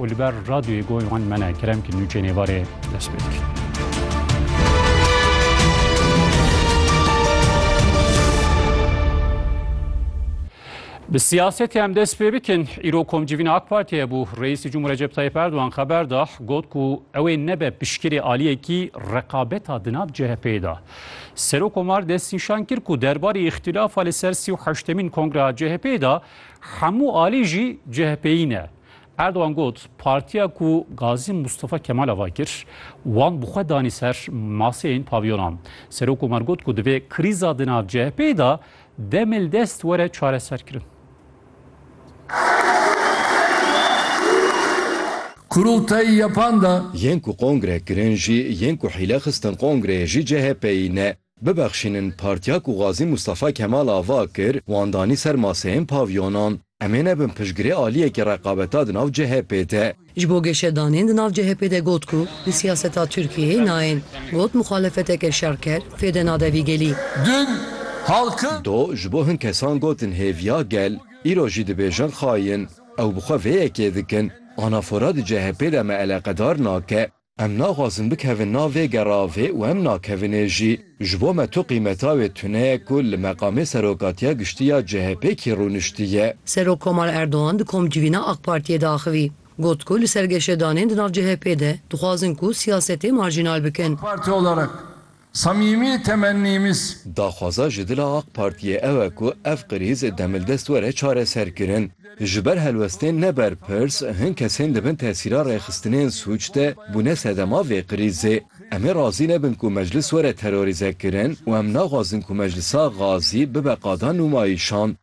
û li ber radyoyê goy wan mene kerem ki nûçeyê nêvarê dest pê dikir. Bi siyasetê em dest pê bikin îro komcivîna AK Partiye bû Reîsî Cumhur Recep Tayyip Erdogan xeber da got ku ew ê nebe piştgirê aliyekî reqabeta di nav CHP'ê da. Serok Omar destnîşan kir ku derbarê îxtîlafa li ser sî û heştemîn kongreya CHP'ê da hemû alî jî CHP'yî ne. Erdogan got, Partiya ku Gazî Mustafa Kemal ava kir, wan bi xwe danî ser maseyên pavyonan. Serokkomer got ku divê krîza di nav CHP'ê de demê li dest were çareserkirin. Kurultayî yepan de. Yên ku kongre kirin jî, yên ku hîle xistin kongreyê jî CHP'yî ne. Bibexşînin partiya ku Gazî Mustafa Kemal ava kir, wan danî ser maseyên pavyonan. Em ê nebin piştgirê aliyekî reqabeta di nav CHP'ê de. Ji bo geşedanên di nav CHP'ê de got ku di siyaseta Tirkiyeyê nayên. Got muxalefeteke şerker fêde nade vî gelî. Dun, halkin. Do, ji bo hin kesan gotin hêviya gel, îro jî dibêjin xayin. Ew bi xwe vê yekê dikin. Anafora di CHP'ê de me eleqedar nake. Em naxwazin bikevin nav vê geravê û em nakevinê jî. Ji bo me tu qîmeta wê tune ye ku li meqamê Serokatiya Giştî ya CHPkî rûniştiye. Serokkomar Erdogan di komcivîna AK Partiyê de axivî. Got ku li ser geşedanên di nav CHPê de dixwazin ku siyasetê marjînal bikin. AK Parti olarak Samîmî temennîmiz. Daxwaza ji dila ak Partiyê ew e ku ev krîz demildest were çareserkirin. Ji ber helwestên ne berpirs, hin kesên di bin tesîra rêxistinên sûc de bûne sedema vê krîzê. Em ê razî nebin ku Meclis were terorîzekirin û em naxwazin ku Meclisa Gazî bibe qada nûmayîşan.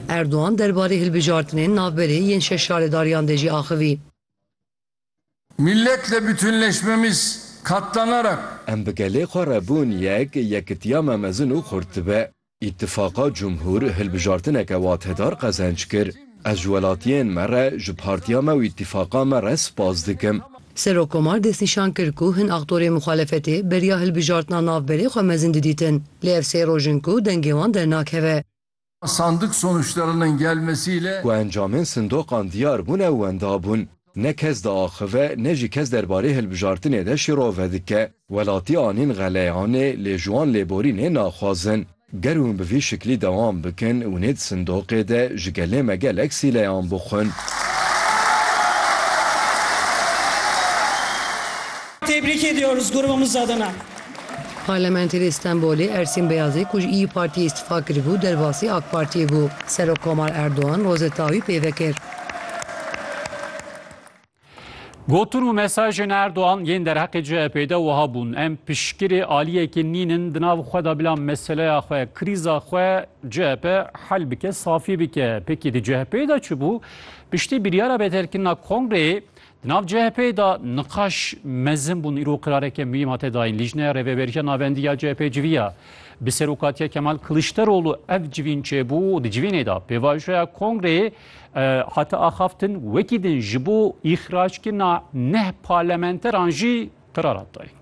Erdogan derbarê hilbijartinên navberê yên şeş şaredariyan de jî axivî. Milletle bütünleşmemiz katlanarak. Em bi gelê xwe re bûn yek, yekitiya me mezin û xurt dibe. Îtîfaqa Cumhur hilbijartineke watedar qezenç kir. Ez ji welatiyên me re, ji partiya me û îtîfaqa me re spas dikim. Serokkomar destnîşan kir ku hin aktorên muxalefetê beriya hilbijartina navberê xwe mezin didîtin, lê ev sê roj in ku dengê wan dernakeve. Sandık sonuçlarının gelmesi ile. Ku encamên sindoqan diyar bûne wenda bûn. Ne kes diaxive ne jî kes derbarê hilbijartinê de şîrove dike. Welatî anîn xeleyanê lê ji wan lêborînê naxwazin. Ger hûn bi vî şiklî dewam bikin û nê di sindoqê de ji gelê me gelek sîleyan bixwin. Tebrik ediyoruz grubumuz adına. Parlementerê Stenbolê Ersîn Beyazî ku ji Îyî Partiyê îstifa kiribû derbasî AK Partiyê bû. Serokkomar Erdogan rozeta wî pê vekir. Gotin û mesajên Erdogan yên derheqê CHP'ê de wiha bûn, Em piştgirê aliyekê nînin di nav xwe de bila meseleya xwe, krîza xwe CHP hel bike, safî bike. Pkk di CHP'ê de çi bû? Piştî biryara bêterkirina kongreyê Di nav CHP'ê de niqaş mezin bûn, îro qirareke muhîm hate dayîn. Lîjneya Rêveberiya Navendî ya CHP'ê civiya bi serokatiya Kemal Kilîçdaroglu ev civîn çêbû û di civînê de pêvajoya kongreyê hate axaftin, wekî din ji bo îxrajkirina neh parlamenteran jî Qerarat dayîn.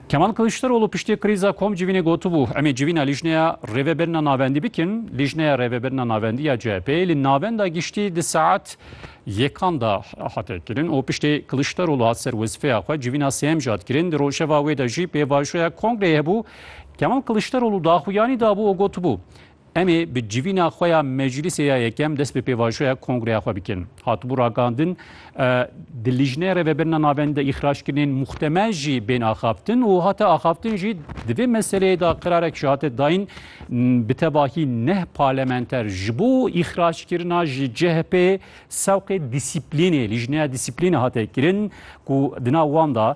Kemal Kiliçdaroglu piştî krîza kom civînê gotibû, emê civîna lîjneya rêvebirina navendî bikin, lîjneya rêvebirina navendî ya CHP'yê li navenda giştî di saet yekan de hate kirin û piştî Kiliçdaroglu hat ser wezîfeya xwe civîna sêyem jî hat kirin. Di rojeva wê de jî pêvajoya kongreyê hebû. Kemal Kiliçdaroglu daxuyanî dabû û gotibû, Em ê bi civîna xwe ya meclîsê ya yekem dest bi pêvajoya kongreya xwe bikin. Hatibû ragihandin di Lîjneya Rêvebirina Navendî de îxraçkirinên muxtemel jî bên axaftin û hate axaftin jî di vê meseleyê de qirarek jî hate dayîn bi tevahî neh parlementer ji bo îxraçkirina ji CHP'ê sewqê dîsîplînê Lîjneya Dîsîplînê hate kirin ku di nav wan de